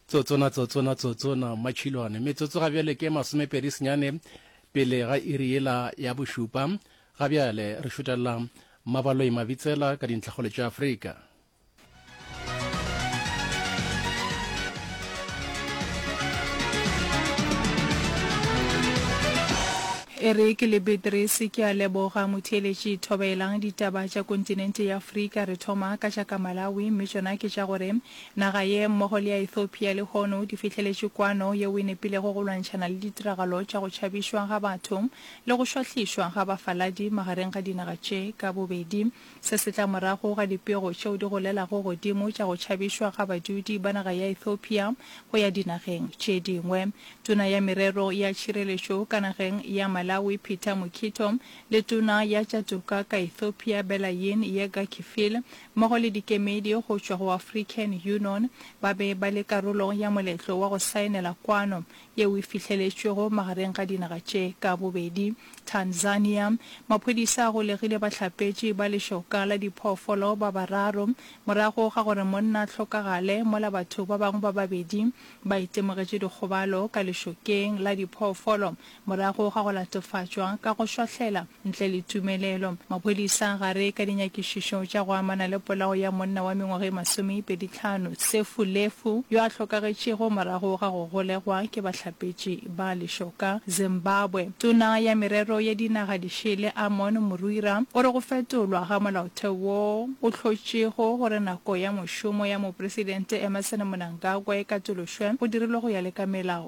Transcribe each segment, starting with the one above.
tsotsona tsotsona tsotsona machilwane metsotso ga bjale ke masomepedi senyane pele ga iri yela ya bošupa ga bjale re šutelela mabaloi mabitsela ka dintlhakgolo tša afrika E re ke le Beatrice, ke a leboga motheeletši. Thobaelang ditaba tša kontinente ya Afrika. Re thoma ka tša ka Malawi, mme tšona ke tša gore naga ye mmogo le ya Ethiopia lehono di fihleletše kwano yeo e nepilego go lwantšhana le ditiragalo tša go tšhabišwa ga batho le go šwahlišwa ga bafaladi magareng ga dinaga tše ka bobedi. Se se tla morago ga dipego tšeo di golelago godimo tša go tšhabišwa ga badudi ba naga ya Ethiopia go ya dinageng tše dingwe. Tona ya Merero ya Tšhireletšo ka nageng ya Malawi Peter Mukhito le Tona ya tša Toka ka Ethiopia Belayin Yega Kifil mmogo le dikemedi go tšwa go African Unon ba be ba le karolo ya moletlo wa go saenela kwano yeo e fihleletšwego magareng ga dinaga tše ka bobedi. Tanzania, Maphodisa a golegile bahlapetši ba lešoka la diphoofolo ba bararo morago ga gore monna a hlokagale mola batho ba bangwe ba babedi ba itemogetše dikgobalo ka lešokeng la diphoofolo morago ga go latofatšwa ka go šwahlela Ntle le tumelelo, maphodisa gare ka dinyakišišo tša go amana le polao ya monna wa mengwaga e masomeipedi tlhano, Sefu Lefu, yo a hlokagetšego morago ga go golegwa ke bahlapetši ba lešoka Zimbabwe. Tona ya Merero ya Dinaga di Šele Amon Murwira o re go fetolwa ga molaotheo wo o hlotšego gore nako ya mošomo ya Mopresidente Emmerson Mnangagwa e katološwe go dirilwe go ya le ka melao.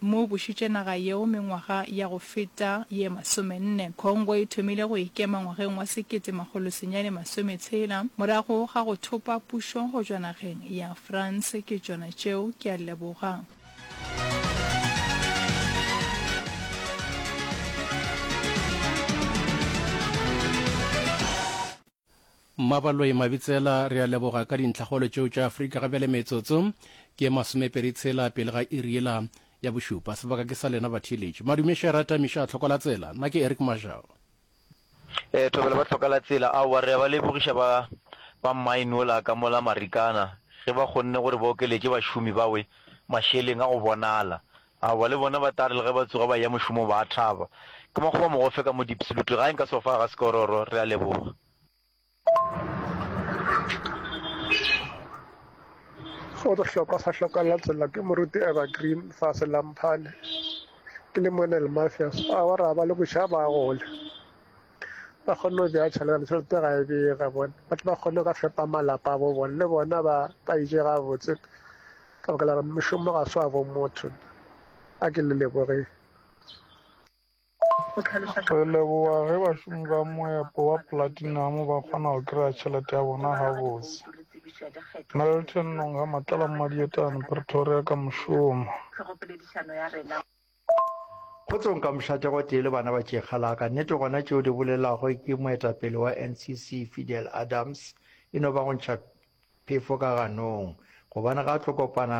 mo bušitše naga yeo mengwaga ya go feta ye masomenne. Congo e thomile go ikema ngwageng wa sekete makgolo senyane masome tshela, morago ga go thopa pušo go tšwa nageng ya France. Ke tšona tšeo. Ke a leboga. Mmabaloi Mabitsela, Re a leboga ka dintlhakgolo tšeo tša Afrika. Ga bjale metsotso ke ye masomepedi tshela pele ga iri yela ya bošupa. Sebaka ke sa lena batheeletši. Madume Shera, Tamiša, Tlhokolatsela, Nna ke Eric Mashau. Ee, Thobela ba Tlhokalatsela, aowa re a ba lebogiša ba ba mine wola ka mola Marikana ge ba kgonne gore ba okeletše bašomi bawe mašeleng a go bonala. Aowa, le bona ba tla re le ge ba tsoga ba eya mošomong ba a thaba. Ke makgoba mogofe ka mo Diepsloot. Tlogai nka sofa ga Sekororo. Re a leboga. Go re hlokwa sa hlokwa la tsela ke moruti Evergreen fa se la Mphane. Ke le mone le Mafias. Aowa ra ba le boša ba gole. Ba kgone go ja tšhelete le tšhelete ga e bega bona. Ba tle ba kgone go ka fepa malapa a bo bona le bona ba ba ije gabotse. Ka baka la gore mošomo ga se wa bo motho, a ke le leboge. Re leboga ge bašomi ba moepo wa Platinum ba kgona go kry-a tšhelete ya bona gabotse. Melton Nongha, Matlala Mmadietane, Pretoria ka mošomo. Kgotso nka mošate gotee le bana ba tšekga la ka. Nnete gona tšeo di bolelago ke moetapele wa NCC Fidel Adams e no ba go ntšha phefo ka ganong gobane ga a tlo kopana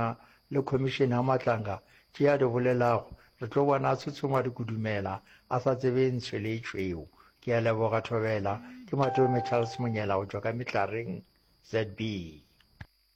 le khomišene ya Matlanga tše a di bolelago re tlo bona a tshotshoma dikudumela a sa tsebe ntshwe le tšweo. Ke a leboga Thobela, ke Matome Charles Monyela go tšwa ka Metlareng, ZB.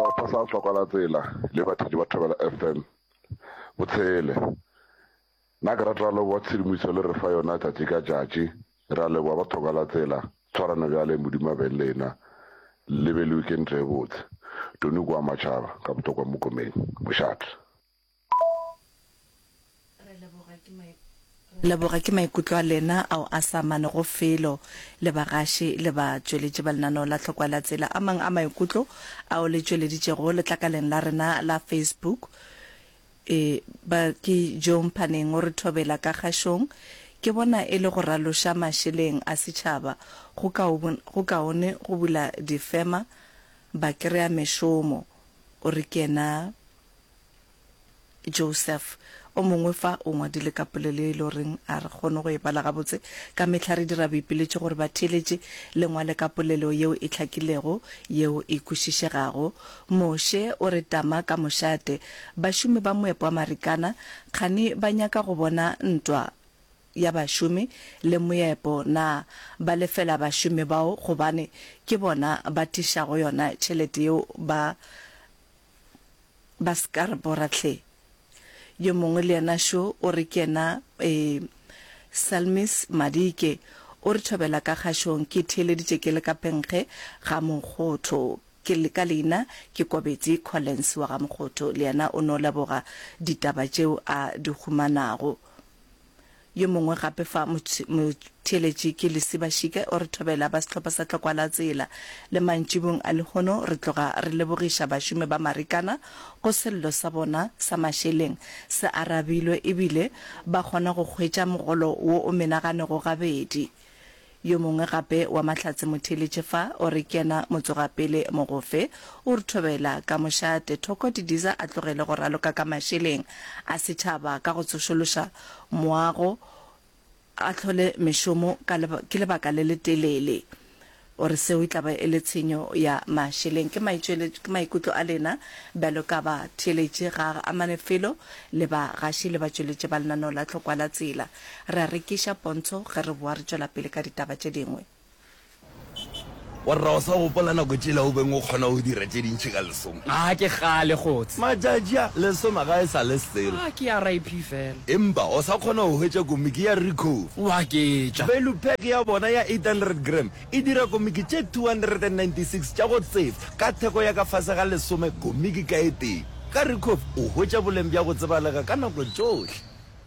Sehlopha sa Hlokwalatsela le bathedi ba Thobela FM bo tshele. Nna ke rata leboa tshedimoiso le re fa yona tšatši ka tšatši. Re a leboa ba Thokalatsela, tshwarano bjale Modimo a be le lena. Le be le weekend e botse. Tony Kua Matšhaba ka Botokwa Mokomeng, Mošate. Re leboga ke maikutlo a lena ao a sa amanego felo le bagaši le batšweletši ba lenaneo la Tlhokwa la Tsela. A mang a maikutlo ao le tšweleditšego letlakaleng la rena la Facebook e ba ke Joe Mphaneng o re thobela ka kgašong. Ke bona e le go raloša mašeleng a setšhaba go go kaone go bula difema ba kry-a mešomo, o re ke yena Joseph, o mongwe fa, o ngwadile ka polelo ye e lego reng a re kgone go e bala gabotse. Ka mehla re dira boipiletšo gore batheeletši le ngwale ka polelo yeo e hlakilego, yeo e kwešišegago. Moshe o re tama ka mošate. Bašomi ba moepo wa Marikana kgani ba nyaka go bona ntwa ya bašomi le moepo na ba lefela bašomi bao gobane ke bona ba tišago yona tšhelete yeo ba Ba se ka re bora hle. Yo mongwe le yena šo o re ke yena eh, Salmis Madike, o re thobela ka kgašong ke theeleditše ke le ka penkge ga Mokgotho. Ke le ka leina ke Kobetsi Collins wa ga Mokgotho. Le yena o no leboga ditaba tšeo a di humanago. Yo mongwe gape fa motheeletši ke Lisi Bashike o re thobela ba sehlopha sa Tlokwa la Tsela. Le mantšibong a lehono re tloga re lebogiša bašomi ba Marikana go sello sa bona sa mašeleng se arabilwe ebile ba kgona go hwetša mogolo wo o menaganego gabedi. Yo mongwe gape wa Mahlatse Motheeletše fa, o re ke yena motsogapele mogofe. O re thobela ka mošate thoko Didiza a tlogele go raloka ka mašeleng a setšhaba ka go tsošološa moago a hlole mešomo ka ke lebaka le letelele. O re seo e tla ba e le tshenyo ya mašeleng. Ke maitšweletšo, ke maikutlo a lena bjalo ka batheeletši ga a amane felo le bagaši le batšweletši ba lenaneo la Tlhokwa la Tsela. Re a rekiša pontsho ge re boa re tšwela pele ka ditaba tše dingwe. Warra, o sa gopola nako tšela o beng o kgona go dira tše dintši ka lesome? A ke kgale kgots. Matšatši a lesoma ga e sa le selo. A ke RIP fela. Empa o sa kgona go hwetša komiki ya Ricoh. Wa ketša. Value pack ya bona ya 800 gram e dira komiki tše 296 tša go tseba ka theko ya ka fase ga lesome komiki ka e tee. Ka Ricoh o hwetša boleng bja go tsebalega ka nako tšohle.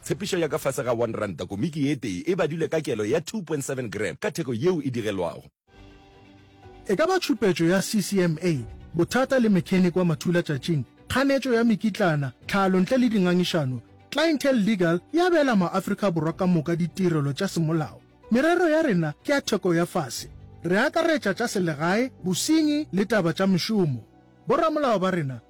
Tshepišo ya ka fase ga one ranta komiki e tee e badilwe ka kelo ya 2.7 gram ka theko yeo e digelwago. E ka ba tšhupetšo ya CCMA, bothata le mechanic wa mathulatšatšing, kganetšo ya mekitlana, tlhalo ntle le dingangišano, Clientele Legal e abela maAfrika Borwa ka moka ditirelo tša semolao. Merero ya rena ke ya theko ya fase. Re akaretša tša selegae, bosenyi le taba tša mešomo. Boramolao ba rena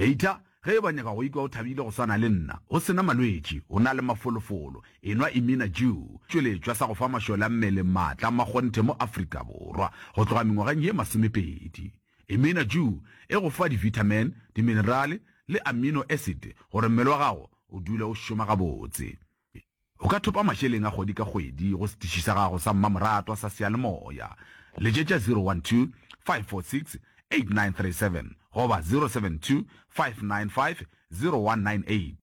Eita ge e ba nyaka go ikwa o thabile go swana le nna, o se na malwetši, o na le mafolofolo, enwa Imina Jew, tšweletšwa sa go fa mašole a mmele maatla a makgonthe mo Afrika Borwa go tloga mengwageng ye masomepedi. Imina Jew e go fa divitamin, diminerale le amino acid gore mmele wa gago o dule o šoma gabotse. O ka thopa mašeleng a kgwedi ka kgwedi go setiši sa gago sa mmamoratwa sa seyalemoya. Letšetša 012 546 8937 goba 072 595 0198.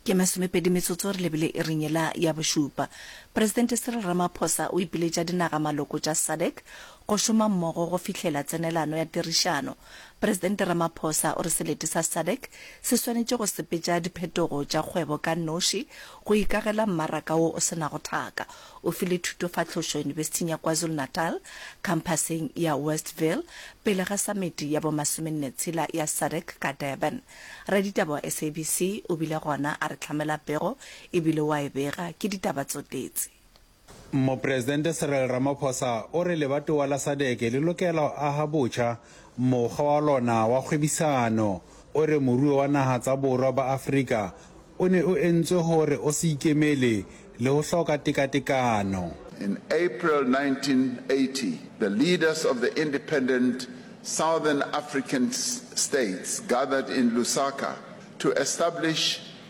Ke masomepedi metsotso re lebile iring yela ya bošupa. Presidente Cyril Ramaphosa o ipiletša dinaga maloko tša SADC go šoma mmogo go fihlela tsenelano ya tirišano Presidente Ramaphosa o re selete sa sadc se swanetše go sepetša diphetogo tša kgwebo ka noši go ikagela mmaraka wo o se nago thaka. O file thutofahlošo Yunibesithing ya KwaZulu-Natal, khamphaseng ya Westville, pele ga samiti ya bo masomenne tshela ya sadc ka Durban. Raditaba wa SABC o bile gona a re hlamela pego e bile wa e bega. Ke ditaba tso tetse. Mopresidente Cyril Ramaphosa o re lebatowa la SADC le lokela go aga botšha mokgwa wa lona wa kgwebisano. O re moruo wa naga tsa Borwa ba Afrika o ne o entswe gore o se ikemele le go hloka tekatekano. In April 1980, the leaders of the independent Southern African states gathered in Lusaka to establish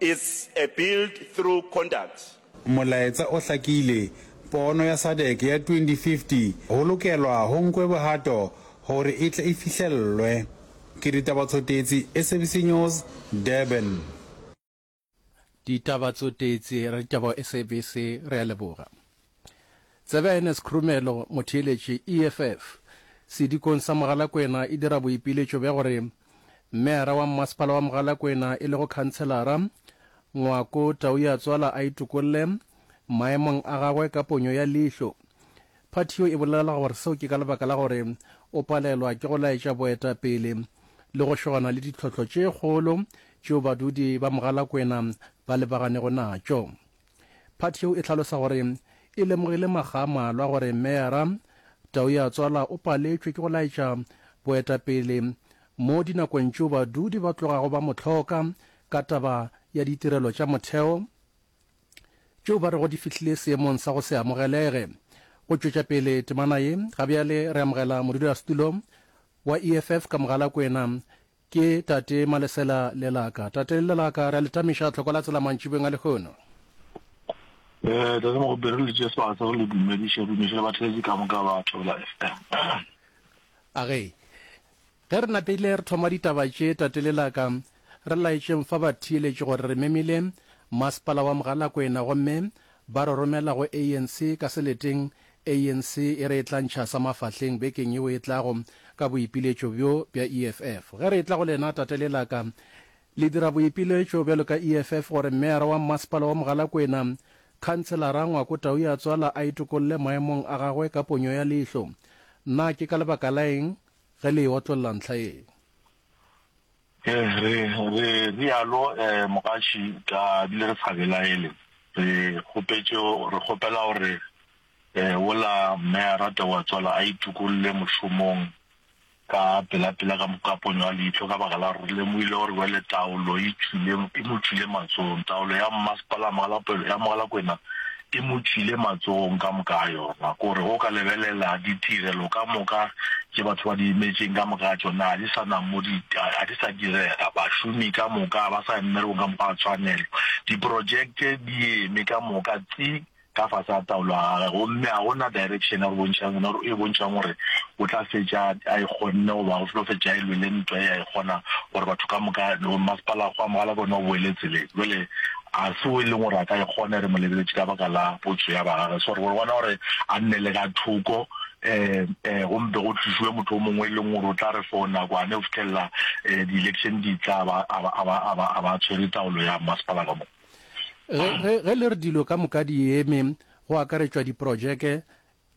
It's a build through conduct. Molaetsa o hlakile, Pono ya SADC ya 2050 go lokelwa go nkwe bohato gore e tle e fihlellwe. Ke Ditaba Tsotetsi, SABC News, Durban. Ditaba Tsotetsi, Re Ditaba SABC, Re a leboga. Tsebe Ernest Khrumelo, motheeletši, EFF, sedikong sa Mogalakwena e dira boipiletšo bja gore Meyara wa Mmasepala wa Mogalakwena e lego Khantshelara Ngwako Tauyatswala a itokolle maemong a gagwe ka ponyo ya leihlo. Phathio e bolela gore seo ke ka lebaka la gore o palelwa ke go laetša boetapele le go šogana le ditlhohlo tše kgolo tšeo badudi ba Mogalakwena ba lebaganeggo natšo. Phathi yeo e hlalosa gore e lemogile makga a malwa gore Meyara Taoiatswala o paletšwe ke go laetša boetapele mo dinakong tšeo badudi ba tlogago ba mo hloka ka taba ya ditirelo tša motheo tšeo ba rego di fihlile seemong sa go se amogelege. Go tšwetša pele temana ye, gabjale re amogela modulasetulo wa EFF ka Mogalakwena Ke tate Malesela le laka. Tate le laka, re a le tamiša tlhoko la tsela mantšibeng a lehono. Ee, Tate Mogope, re le tšee sebaka sa go le dumediša, re dumediša le batheetši ka moka ba Thobela FM. Age, ge re napile re thoma ditaba tše, tate le laka, re laetšeng fa batheeletši gore re memile Masepala wa Mogalakwena gomme ba re romela go ANC ka seleteng ANC e re e tla ntšha sa mafahleng bekeng yeo e tlago ka boipiletšo bjo bja EFF. Ge re etla go lena, tate le la ka, le dira boipiletšo bjalo ka EFF gore meyara wa mmasepala wa Mogalakwena, Khanselara Ngwako Tau ya Tswala a itokolle maemong a gagwe ka ponyo ya leihlo? Na ke ka lebaka la eng ge le e otlolla ntlha ye? Re re re rialo Mogatši ka bile re sa belaele. Re kgopetše re kgopela gore wola Mme a rate wa tswala a itukolle mošomong ka pela pela ka ka ponyo ya leihlo ka baka la re lemohile gore wele taolo e tšwile e mo tšwile matsohong. Taolo ya Mmasepala ya Mogalakwena E mo tšhile matsogong ka moka a yona. Ko re go ka lebelela ditirelo ka moka tše batho ba di imetšeng, ka moka ga tšona ga di sa na mo di, ga di sa direga. Bašomi ka moka ga ba sa ya mmerekong ka mokgwa wa tshwanelo. Diprojekte di eme ka moka tsi ka fase ga taolo ya gagwe, gomme ga go na direction ya go bontšha yona gore, e bontšhang gore o tla fetša a e kgonne goba o tlo fetša a e lwele ntwa ye a e kgona gore batho ka moka, masepala wa go amogela ke ona o boele tseleng. Jwale Ga se wo e leng gore a ka e kgona, re mo lebeletše ka baka la potso ya bagage. So re go bona gore a nne le ka thoko, um go mpe go tlišiwe motho o mongwe e leng gore o tla re for nakwane go fitlhelela um di-election di tla a ba, a ba, a ba, a ba, a ba tshwere taolo ya mmasepala ka mo. Ge, ge, ge le re dilo ka moka di eme, go akaretšwa diprojeke,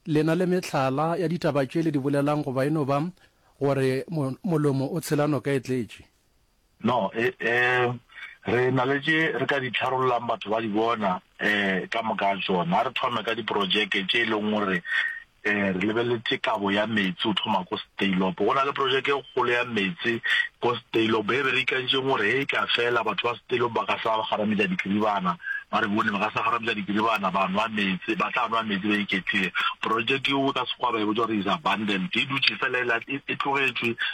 le na le mehlala ya ditaba tše le di bolelang goba e no ba gore mo, molomo o tshela noka e tletše? No, e, e, re na le tše re ka di tharollang batho ba di bona e, ka moka tšona. A re thome ka diprojeke tše e leng gore e, re lebeletše kabo ya meetse o thoma ko Steylopo. Go na le projeke e kgolo ya meetse ko Steylopo e be re ikantšeng gore he e ka fela batho ba Steylopo ba ka sa ba garametša dikiribana, ba re bone ba ka sa garametša dikiribana ba nwa meetse, ba tla nwa meetse ba iketlile. Projeke yeo ka Sekgowa ba e botša gore is abandoned, e dutše fela e, e, e tlogetšwe.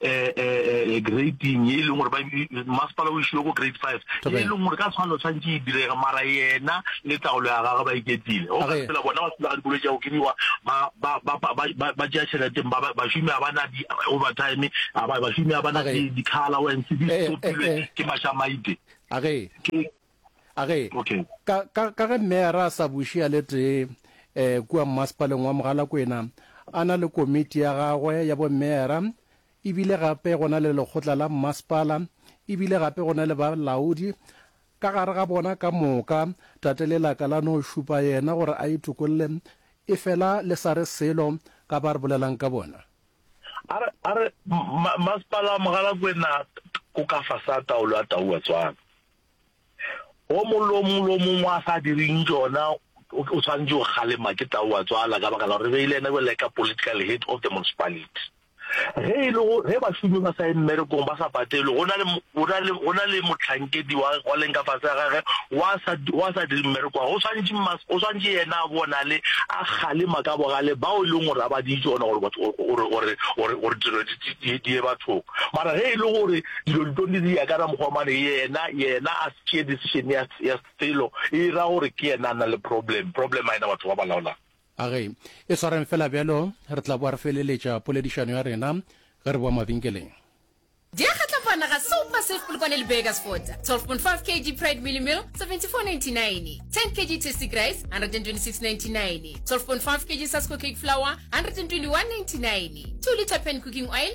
eh, eh, eh, eh grading ye e leng gore masepala o išile go grade five ye e leng gore ka tshwanelo tshwantse e direga mara yena le taolo ya gagwe ba iketile go ka tsela bona ba tsela ga dikolo tša go kediwa ba tšea tšheleteng bašomi ga ba na di-overtime bašomi ga ba na di-car allowance di stopilwe ke mašamaite a ge okay. ka, ka, ka ge meera a sa buše ya le tee um kua mmasepaleng wa mogalakwena a na le komiti ya gagwe ya bomeera ebile gape go na le lekgotla la mmasepala ebile gape go na le balaodi ka gare ga bona ka moka tate le laka la no šupa yena gore a itokolle e fela le sa re selo ka ba re bolelang ka bona a re a re mmasepala wa mogalakwena o ka fa sa taolo ya tau wa tswana o molomo lo mongwe a sa direng jona o tshwanetse o kgalema ke tau wa tswala ka baka la gore beile ena go leka political head of the municipality ge e le ge bašomi ba sa ye mmerekong ba sa patelwe go na le motlhankedi wa leng ka fase ya gage wa sa dire mmereko wa go tshwanetse yena a bonale a kgalema ka bogale bao e leng gore a ba di tsona gore dilo di ye bathong mara ge e le gore Dilo di tlo diriya ka na mokgwa mane yena yena a tšee decision ya ya selo e ira gore ke yena a na le problem problem a yena batho ba ba laolang. A ge e swareng fela bjalo re tla boa re feleletša poledišano ya rena ge re boa mabenkeleng. Diakgatla fana ga se upa safe polokwane le burgers fota 12.5 kg pride mealy meal 74.99 10 kg tasty grace 126.99 12.5 kg sasko cake flour 121.99 2 litre pan cooking oil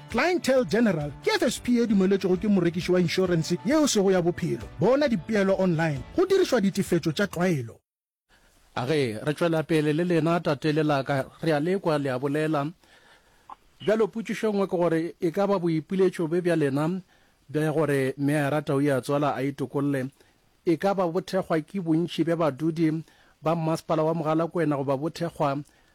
Clientele General ke FSP e dumeletšwego ke morekiši wa inšorense yeo e sego ya bophelo. Bona dipeelo online go dirišwa ditefetšo tša tlwaelo. A ge re tšwela pele le lena, tate le la ka, re a le kwa le a bolela. Bjalo potšišo e nngwe ke gore e ka ba boipiletšo bje bja lena bja gore Mme a rata o ya tswala a itokolle e ka ba bo thekgwa ke bontši bja badudi ba Mmasepala wa Mogalakwena goba bo thekgwa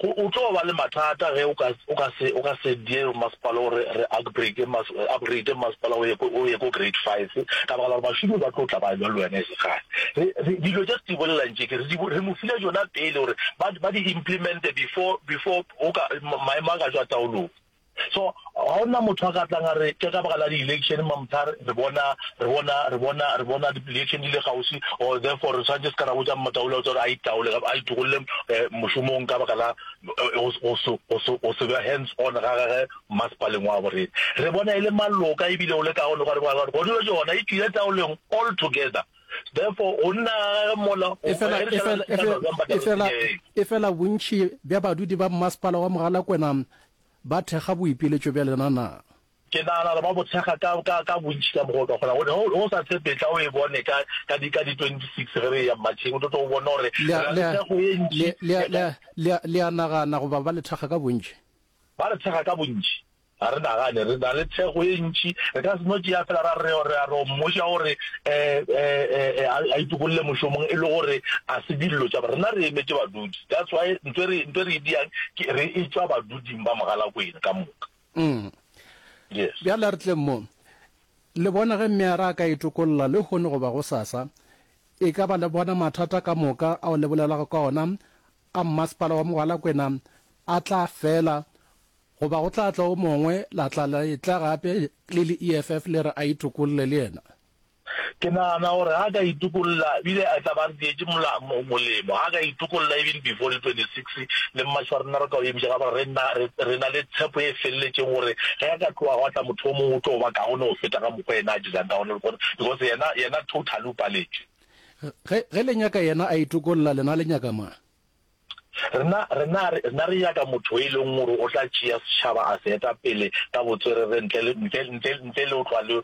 Go, o tlo ba le mathata ge o ka, o ka se, o ka se die masepala o re, re upgrade mas, upgrade masepala o ye ko, o ye ko grade five, ka baka la gore bašomi ba tlo tla ba lwa le wena e se kgale. Re, re, dilo tše re di bolelang tše ke, re di, re mo file tšona pele gore ba, ba di implemente before, before o ka, maemo a ka tšwa taolong. So ga ona motho a ka tlang a re ke ka baka la di-election mamtha re bona re bona re bona re bona di-election di le gausi or therefore re tshwanetse se ka ra botsa Motaule o tsore a itaole kapa a itogolole mošomong ka baka la go se be hands on ga gage masepaleng wa bo rena re bona e le maloka ebile o le ka gone gore go dilo jona e tswile taoleng all together therefore go nna ga mola e fela bontšhi bja badudi ba mmasepala wa mogalakwena Ba thekga boipiletšo bja lena na? Ke nagana gore ba bo thekga ka, ka, ka bontši ka mokgwa o ka kgonago. Ge o, ge o sa tshepe, tla o e bone ka, ka di, ka di 26 ge re eya Matšheng, o tlo tlo o bona gore re Le a, na le le a, thekgo ye ntši le, le a, le a, le a, le a nagana goba ba le thekga ka bontši? Ba re thekga ka bontši. Ga re nagane, re na le thekgo ye ntši. Re ka se no tšea feela ra re, re a ro mmoša gore e, e, e, e, a, a itokolle mošomong e le gore a se dillo tša, rena re emetše badudi. That's why ntse re ntse re diang ke re e tswa baduding ba mogalakwena ka moka. Mm. Yes. Bjale re tleng mo. Le bona ge mme a re a ka itokolla le hone go ba go sasa, e ka ba le bona mathata ka moka ao le bolelago ka ona a mmasepala wa mogalakwena a tla fela goba go tla tla o mongwe la tla la etla gape le le EFF le re a itokolle le yena. Ke nagana gore ga a ka itokolla ebile a tla ba re dietše molemo. Ga a ka itokolla even before di 26 le March wa rena re ka o emiša ka gore re na le tshepo e feleletšeng gore ge a ka tloga gwa tla motho o mongwe o tlo ba kaone go feta ka mokgwa yena a dirang ka gona because yena yena totally o paletše. Ge ge le nyaka yena a itokolla lena le nyaka mang? Rena rena rena re nyaka motho e leng gore o tla tšea setšhaba a se eta pele ka botswerere ntle ntle ntle ntle le o tlwa le